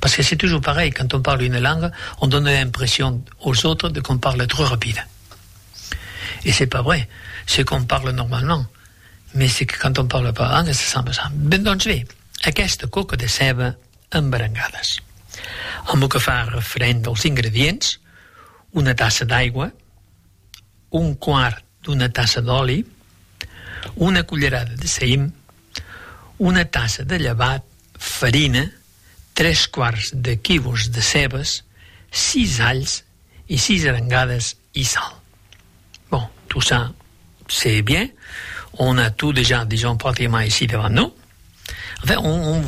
Parce que c'est toujours pareil, quand on parle une langue, on donne l'impression aux autres de qu'on parle trop rapide. Et c'est pas vrai, c'est qu'on parle normalement, mais c'est que quand on parle pas la langue, ça semble ça. Ben doncs bé, aquesta coca de ceba amb berengades. Amb lo que fa referent als ingredients, una tassa d'aigua, un quart d'una tassa d'oli, una cullerada de saïm, una tassa de llevat, farina, tres quarts de quivos de cebes, sis alhs e sis arengades e sal. Bon, tout ça c'est bien, on a tout dejà disons pratiquement ici devant nous. En fait, on, on,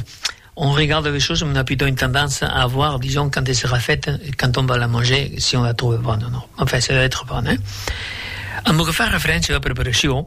on regarde les choses, on a plutôt une tendance à voir, disons, quand elle sera faite, quand on va la manger, si on la trouve bonne ou non. Enfin, ça doit être bon, hein. En lo que fa referéncia a la preparacion,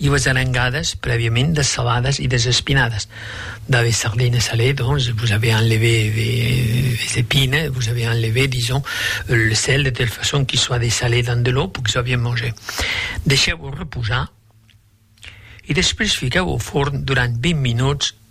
I vos arangadas prèviament dessaladas e desespinadas. Dab es sardines salées, donc, vos avei enlevé es epines, vos avei enlevé, disons, le sel, de telle façon qu'il soit dessalé dans de l'eau pour qu'il soit bien mangé. Deishèu-vos reposar e despús fiquèu au forn durant 20 minuts